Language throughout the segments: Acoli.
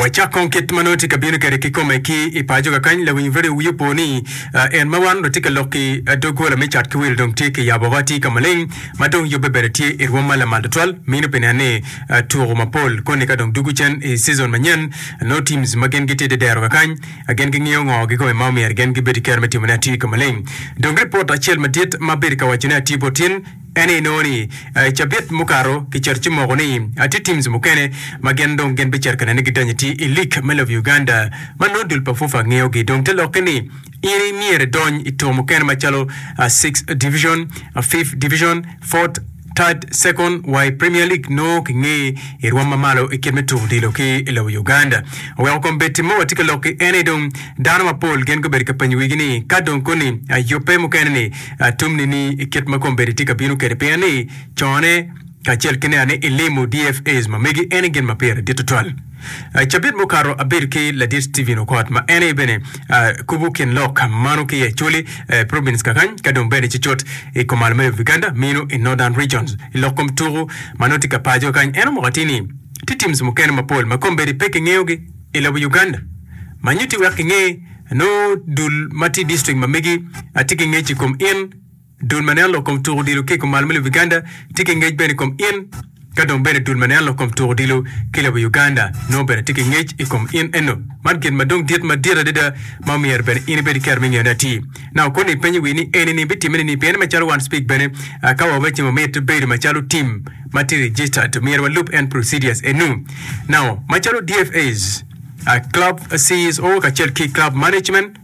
Wacak kong kit ma nongo tye ka bino kwede kikome. Ki i paco kakany, lawiny redio wiye opo ni, En ma wan watye ka lok-ki, doggola me cat ki wil dong tye kiyabo woko atir ka maleng, ma dong yubbe bene tye i rwom ma lamal tutwal. Mino pi nen ni tuku mapol koni ka dong dwogo cen i cizon manyen, nongo teams ma gin gitye dedero kakany, gin gingiyo ngo kikome ma omyero gin gibed ki kero me timone atir ka maleng. Dong ripot acel madit ma bedo ka wacone atir bot in, En aye nongo ni i cabit mukato kicito ci moko ni tye teams mukene ma gin dong gin bicito ka nene gidanyi tye i league me lobo Uganda ma nongo dul pa FUFA ngeyo gi dong te lokke ni in i myero idony i tuko mukene macalo six division, fifth division, fourth, third, second wa i premier league nongo ki ngeye i rwom ma malo i kit me tuko odilo ki i lobo Uganda. Oweko kom bed tim mowa tye ka lokki en aye dong dano mapol gin gubedo ka penyo wigi ni ka dong koni yubbe mukene ni Atumni ni i kit ma kombeddi tye ka bino kwede pien ni cone kacel ki nea ni ilimo DFAs ma megi en aye gin ma pire dit tutwal. Cabit mukato abedo ki Ladit Stephen Okot ma en aye bene kubo kin lok mano ki i Acholi Province kakany ka dong bene ci cut i Komal Mayo of Uganda mino i Northern Regions. I lok kom tuku ma nongo tye ka paco kakany en omoko atir ni tye teams mukene mapol ma kombeddi pe kingeyogi i lobo Uganda ma nyutti wek kinge Nongo dul ma tye i distrikt ma megi tye ki ngec i kom in, dul ma nen lok kom tuk odilo ki i kumal me lobo Uganda tye ki ngec bene i kom in, ka dong bene dul ma nen lok kom tuk odilo ki i lobo Uganda nongo bene tye ki ngec i kom in. Eno, man gin ma dong dit madit adada ma myero bene in ibed ki kero me ngeyone atir. Naka koni ipenyo wii ni enini bitimme nining? Pien macalo wan speak bene, ka wawaco ni wamit bedo macalo tim ma tye registered, myero walub en procedures enu. Nao, macalo DFAs, A Club CEO kacel ki club management,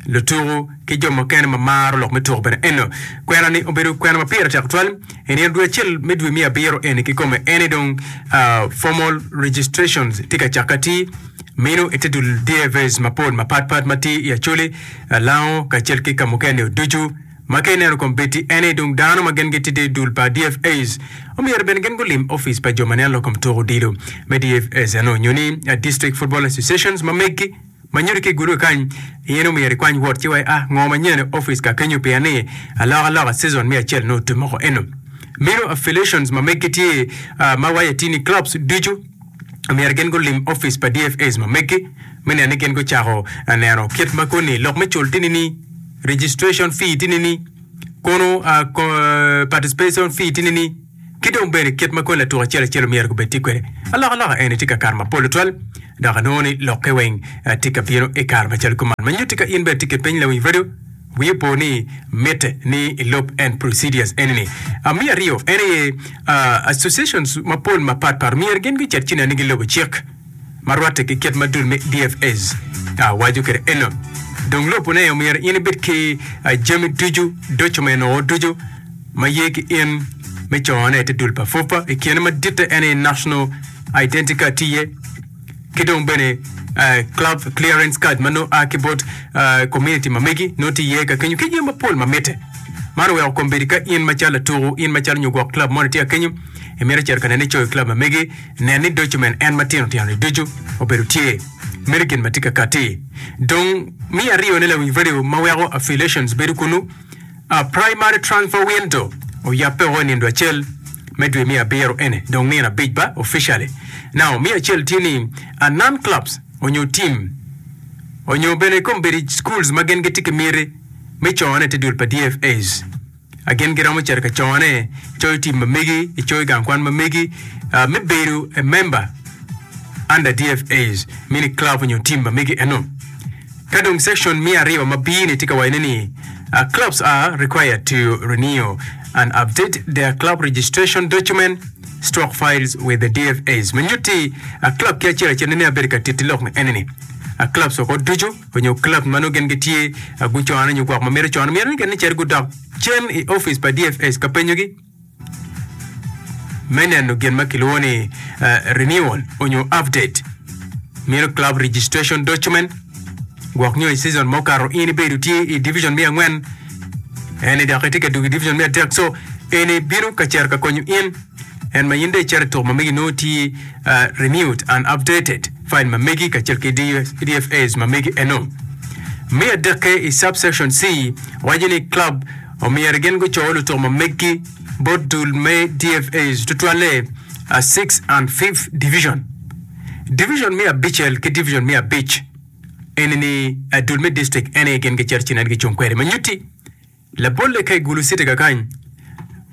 lutuku, ki jo mukene ma maro lok me tuku bene eno. Kwena ni obedo kwena ma pire tek twal. I nino dwe acel me dwe miya abiro eni kikome ene dong uh, formal registrations tye ka cake atir. Mino ite dul DAVs mapol mapat pat ma tye i Acholi, uh, Lango kacel ki kamukene-ni ducu. Ma ka ineno kom bed-di ene dung dano ma gin gitide i dul pa DFS, omyero bene gin gulim ofice pa jo ma neno lok kom tuko odilo me DFS eno nyo ni District Football Associations ma meggi ma nyuto ki i gurube kany. In omyero ikwany wot ci wa ia ngo ma nyen i ofice ka kenyo pien ni alokaloka season me acel nongo tye moko eno. Mino affiliations ma meggi tye ma waco atir ni clubs ducu omyero gin gulim ofice pa DFS ma meggi me neno ni gin gucako neno kit ma koni lok me cul tini ni registration fee tye nini, kono participation fee tye nini, ki dong bene kit ma kony latuk acel acel omyero gubed tye kwede. Alokaloka eni tye ka kato mapol tutwal, dok anongo ni lokke weng eh, tye ka bino i kare macalo kuman. Ma nyutti ka in bene tye ki piny lawiny radio, wiyi opo ni mitte ni ilub en procedures eni-ni. Ah, me aryo en aye ah, associations mapol mapatpat myero gin gucit cinani gilubo cik. ma rwatte ki kit madul me DFAs, waco kwede eno, dong lopone omyero in ibed ki jami ducu, doco ma inongo ducu ma ye ki in me cone te dul pa FUPA, i kine maditte en aye National Identity Card tye iye, ki dong bene Club Clearance Card ma nongo a ki bot community ma megi nongo tye iye ka kenyo ki jami mapol ma mitte. Man oweko kombeddi ka in macalo latuku, in macalo nyo gwok club moni tye ka kenyo, imito cito ka nene coyo club ma megi, Nen ni doco men en matino tino-ni ducu obedo tye mere gin ma tye ka katti. Dong mi ariyone lawiny radio ma weko affiliations bedo kunnu, a primary transfer window, oyabbe woko i nindo acel me dwe miya abiro ene dong nino abic ba officially. Now miya acel tye ni a non clubs onyo team onyo bene kombedi schools ma gin gitye ki miti me cone te dul pa DFAs. A Gin giromo cito ka cone coyo tim ma megi i coyo gang kwan ma megi ah, me bedo a member under DFAs mini club onyo tim ma megi eno. Ka dong section me aryo ma B ni tye ka wacone ni ah, clubs are required to renew and update their club registration document stock files with the DFAs ma nyutti ah, club ki acel acel ne ni abedo ka titi lok ni ene ni ah, clubs woko ducu onyo club ma nongo gin gitye a gucone onyo gwok ma mito cone myero ni gin ni cit gudok cen i office pa DFS ka penyo gi me neno gin ma kilwongo ni eh, renewal onyo update mino club registration document gwok nyo i season ma okato in ibedo tye i division me angwen ene dok itye ka dugo i division me adek so ene bino ka cito ka konyo in En ma in dong icito ituko ma megi nongo tye renewed and updated file ma megi kacel ki DFAs ma megi eno. Me adekke i Subsection C waco ni club omyero gin guco lutuko ma megi bot dul me DFAs tutwalle a Sixth and Fifth Division. Division me abicel ki division me abic eni ni a dul me district ene gin gicito ci nen gicung kwede ma nyutti Labolle ka igulu citi kakany,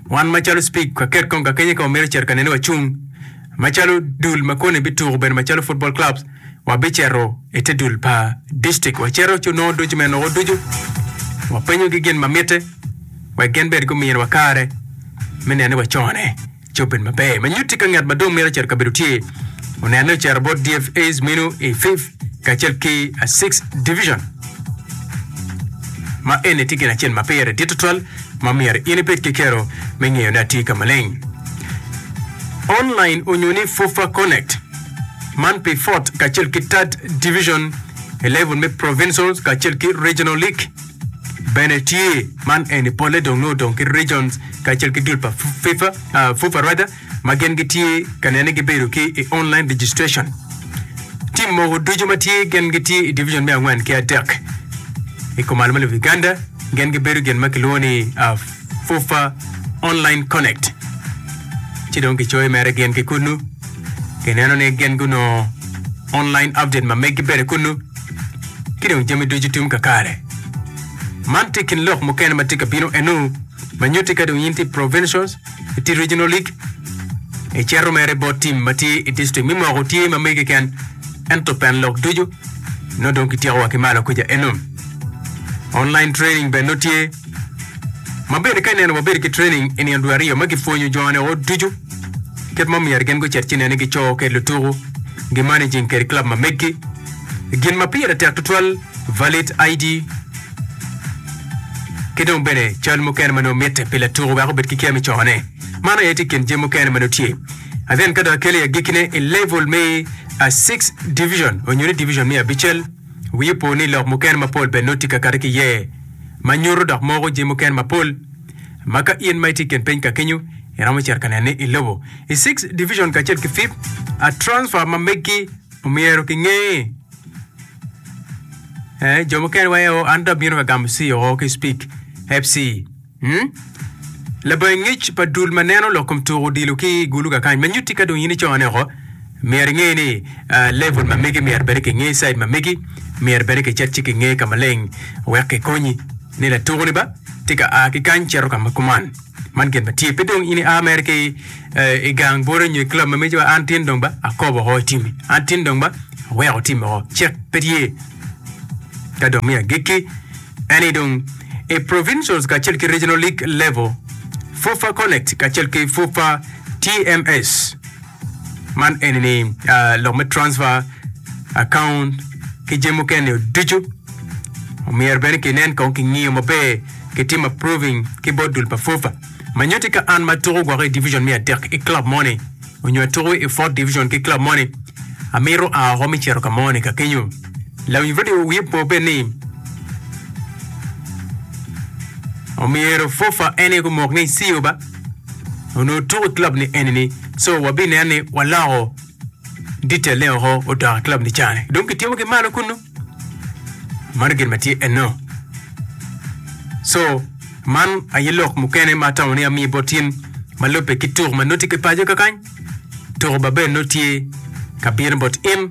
wan macalo Spig ka ket kong kakenye ka wamito cito ka nene wacung, macalo dul ma koni bituku bene macalo football clubs, wabicito ite dul pa district wacito ci onongo ducu me noko ducu wapenyogi gin ma mitte wek gin bene gumiyowa kare me nene wacone. Coben maber ma nyutti ka ngat ma dong mito cito kabedo tye onenne ocito bot DFAs meno i Fifth kacel ki a Sixth Division, ma eni tye gin acel ma pire dit tutwal ma myero in ibed ki kero me ngeyone atir ka maleng. Online onyo ni FUFA Connect. Man pi Fourth kacel ki Third Division i level me Provincial kacel ki Regional League. Bene tye, man eni polle dong nongo odong ki regions kacel ki dul pa FIFA, uh, FUFA rather, ma gin gitye ka nene gibedo ki i online registration. Tim mogo ducu ma tye gin gitye i division me angwen ki adek i kom almalip Uganda, gin gibedo gin ma kilwongo ni uh, FUFA Online Connect, ci dong gicoyo mere gin ki kunnu. Gineno ni gin gunongo online update ma megi bene kunnu, ki dong jami ducu tum kakare. Man tye kin lok mukene ma tye ka bino enu ma nyutti ka dong in tye i Provincials, i tye Regional League, i cito mere bot tim ma tye i District. Mi moko tye ma megi keken, ento pen lok ducu nongo dong kityeko wa ki malo kuca enu. Online training bene nongo tye. Ma bene ka ineno wabedo ki training i nino dwe aryo ma gipwonyo jone ot ducu kit ma myero gin gucit cine ni gico kede lutuku, gimanaging kede club ma meggi. Gin ma pire tek tutwal valid ID ki dong bene cal mukene ma nongo mitte pi latuku wek obed ki kya me cone. Mano aye tye i kin jami mukene ma nongo tye. And then ka dong akeli agikkine i level me a six division onyo ni division me abicel, Wi opo ni lok mukene mapol bene nongo tye ka kati ki iye ma nyuto dok moko jami mukene mapol ma ka in ma itye i kin piny ka kenyo iromo cito ka nene i lobo. I Six Division kacel ki Fifth, a transfer ma meggi omyero ki nge. Eh, jo mukene waye o, an dong abino me gamo si o ki Speke FC. Labangi ngec pa dul ma neno lok kom tuko odilo ki i gulu kakany ma nyutti ka dong in icone oko. Myero inge ni level ma megi myero bene ki nge side ma megi myero bene ki cet ci ki nge ka maleng wek ki konyi ni latuko ni ba tye ka a ki kany cito ka ma kuman. Man gin ma tye pe dong in i a mere ki i gang bwota nyo i club ma megi an tin dong ba akobo oko i timi an tin dong ba aweko timi oko cek pe tye ka dong miyo agikki. Eni dong i Provincials kacel ki Regional League level, FUFA Connect kacel ki FUFA TMS. Man eni ni ah, lok me transfer, account ki jami mukene nio ducu omyero bene kinen kong kingiyo maber kitim approving ki bot dul pa FUFA. Manyoti ka an ma tuko gwok i division me adek i club moni, onyo atuku i fourth division ki club moni amito a oko mi cito ka moni ka kenyo lawiny radio wiye po bed ni omyero fofa en aye gumok ni siyo ba onongo tuku i club ni eni ni so wabineno ni waloko detail ne oko odok i club ni cani dong kitimo ki malo kunu Mano gin ma tye enno. So, man aye lok mukene ma atamo ni amiyo bot in ma lubbe ki tuk ma nuti ki paco kakany. Tuko Babel nut tye ka bino bot in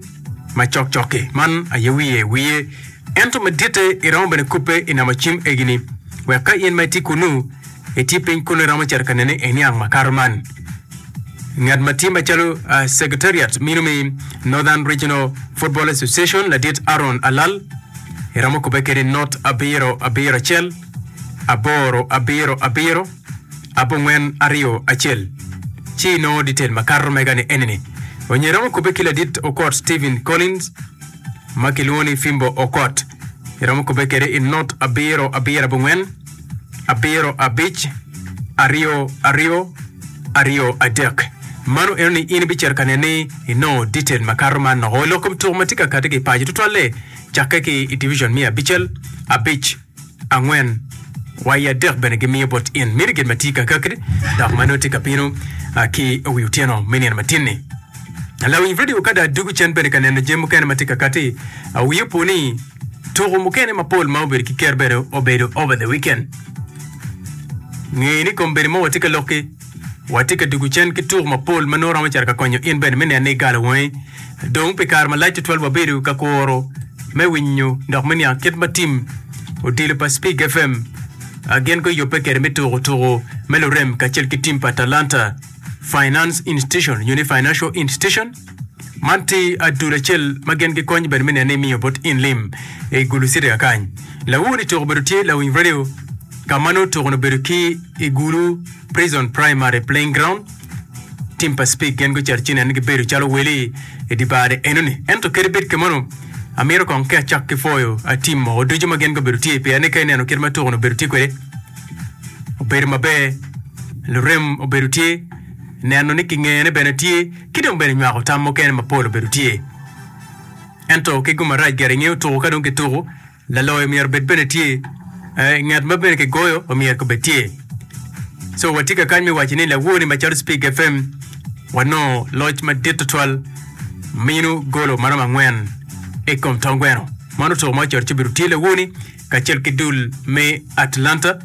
ma cok cok-ki. Man aye wiye wiye. Ento maditte iromo bene kubbe i namo cim egini wek ka in ma itye kunnu Itye piny kunu iromo cito ka nene i niang makato man. Ngat ma tye macalo uh, Secretariat meno me Northern Regional Football Association ladit Aaron Alal iromo kubbe kede not abiro abiro acel aboro abiro abiro abongwen aryo acel ci inongo detail makato mega ni enini. Onyo iromo kubbe ki ladit Okot Stephen Collins ma kilwongo ni Fimbo Okot iromo kubbe kede i not abiro abiro abongwen abiro abic, aryo aryo, aryo adek. Mano eno ni in ibicito ka nene ni inongo detail makato man noko lok kom tuko ma tye ka kati ki paco tutwalle cakke ki i division miya abicel, abic, angwen, wa i adek bene gimiyo bot in mini gin ma tye ka kakki dok ma nongo tye ka bino ah, ki wi otyeno me nino matinni. Lawiny vidio kada adwogo cen bene ka neno jami mukene ma tye ka kati, ah, wi opo ni Tuku mukene mapol ma obedo ki ker bene obedo over the weekend. Nge ni kombeddi ma watye ka lokki, watye ka dwogo cen ki tuku mapol ma nongo romo cito ka konyo in bene me neno ni igalo wangi. Dong pi kare malac tutwal wabedo ka kuro me winyo dok me niang kit ma tim odilo pa Spig FM a gin guyubbe kwede me tuku tuku me lurem kacel ki tim pa Talanta Finance Institution nyo ni Financial Institution. Man ti adul acel ma gin gikony bene me neno ni imiyo bot in lim i gulu citi kakany. Lawu ni tuko obedo tye lawiny radio ka ma nongo tuko-ni obedo ki i gulu Prison Primary Playing Ground. Tim pa Speke gin gucito ci neno gibedo calo wele i di bar-ri enoni. Ento kadi bed kemano, amito kong ki acak ki pwoyo a tim moko ducu ma gin gubedo tye pien ni ka ineno kit ma tuko-ni obedo tye kwede, obedo maber, lurem obedo tye, neno ni kingene bene tye. ki dong bene nywako tam mukene mapol obedo tye. Ento keggo marac ger ingeyo tuko ka dong kituko, laloyo myero obed bene tye, eh, ngat ma bene kigoyo omyero kobed tye. So watye ka kany me waco ni lawoni macalo Spig FM wanongo loc madit tutwal minu golo maromo angwen ikom tong gweno. Mano tuko ma ocoto ci obedo tye lawoni. kacel ki dul me Atlanta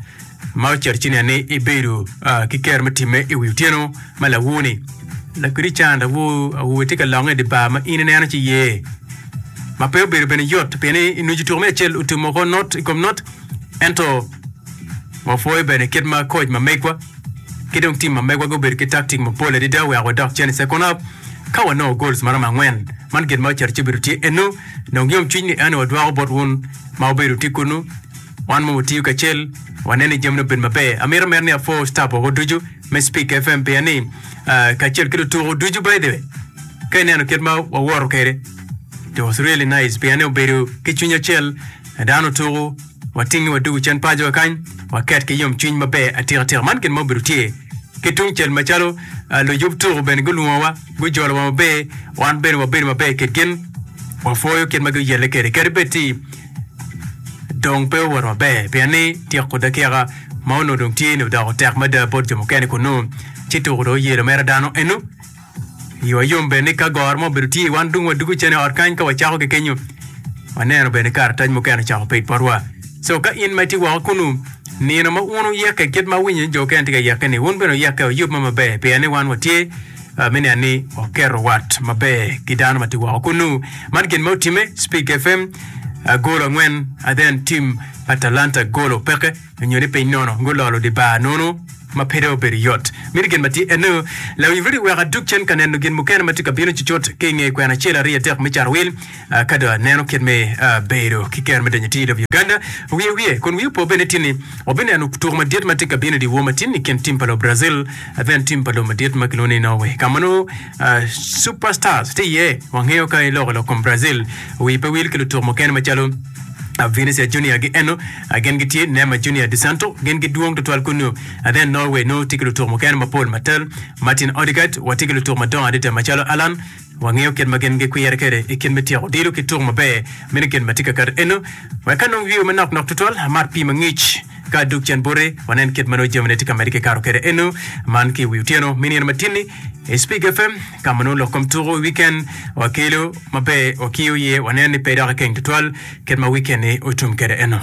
ma ocito ci nene ibedo ah, ki kero me timme i wi otyeno ma lawoni. Lakiri can awo awobe tye ka longe i di bar ma in ineno ci ye. Ma pe obedo bene yot pien ni inweco tuko me acel otumo ko not i kom not ento wapwoyo bene kit ma koc ma megwa ki dong tim ma megwa gubedo ki taktik mapol adada wek wadok cen i second half ka wanongo goals maromo angwen. Man gin ma ocito ci obedo tye eno dong yomcwiny ni eno wadwoko bot wun ma wubedo wutye kunnu. Wan mogo watiyo kacel, waneno ni jamine obedo maber. Amito amera ni apwo staf woko ducu me Speak FM pien ni ah, kacel ki lutuku ducu by the way, ka ineno kit ma wawoto kwede, it was really nice pien ni obedo ki cwiny acel, dano tuku, Watingi wadug i cen pacowa kany, waket ki yomcwiny maber atikatika. Man gin ma obedo tye ki tungcel macalo ah, luyub tuko bene gulwongowa, gujolowa maber, wan bene wabedo maber kit gin. Wapwoyo kit ma guyelle kwede, kadi bed ti dong pe owoto maber, pien ni tyeko dakika ma onongo dong tye-ni odoko tek mada bot jo mukene kunnu, ci tuko dong oyelo mere dano eno. Iwa yom bene ni ka goro mo obedo tye, wan dong wadwogo cen i ot kany ka wacako ki kenyo. Waneno bene karatac mukene ocako pe i potwa. So ka in ma itye woko kunnu, nino ma wun wuyekke kit ma awinyo ni jo okene tye ka yekke-ni, wun bene wuyekke oyub ma maber pien ni wan watye ah, me niang ni waketo wat maber ki dano ma tye woko kunnu. Man gin ma otimme, Speak FM ah, golo angwen, ah, then tim pa Talanta golo peke. Nyo ni piny nono gulolo di bar nono ma pede obedo yot. Miti gin ma tye eno, Lawiny Rudy wek adug cen ka neno gin mukene ma tye ka bino cucut ki i nge kwena acel aryo adek me carowil. Ka dong aneno kit me bedo ki kero me donyo TW Uganda, wiya wiye kun wiya opo bene tye ni wabineno tuku madit ma tye ka bino di wor matin i kin tim pa lobo Brazil then tim pa lobo madit ma kilwongo ni Norway ka ma nongo Super Stars tye iye. Wangeyo ka iloko lok kom Brazil, wi pe wil ki lutuk mukene macalo Vinicius Junior gi eno gin gitye Neymar Junior de Santo gin gidwong tutwal kunnu then Norway no tye ki lutuk mukene mapol matel Martin Odegaard watye ki lutuk madongo adada macalo Alan wangeyo kit ma gin gikwire kwede i kit me tyeko odilo ki tuk maber meno gin ma tye ka kato eno wek ka nongo wiwa manok nok tutwal amar pii mangic ka adok cen bote wanen kit ma nongo jamine tye ka mede kikato kwede eno man ki wi otyeno me nino matinni I Speak FM, ka ma nongo lok kom tuko i wiken, wakelo ma pe wakiyo iye, waneno ni pe dok ikeng tutwal, kit ma wiken-ni otum kwede enok.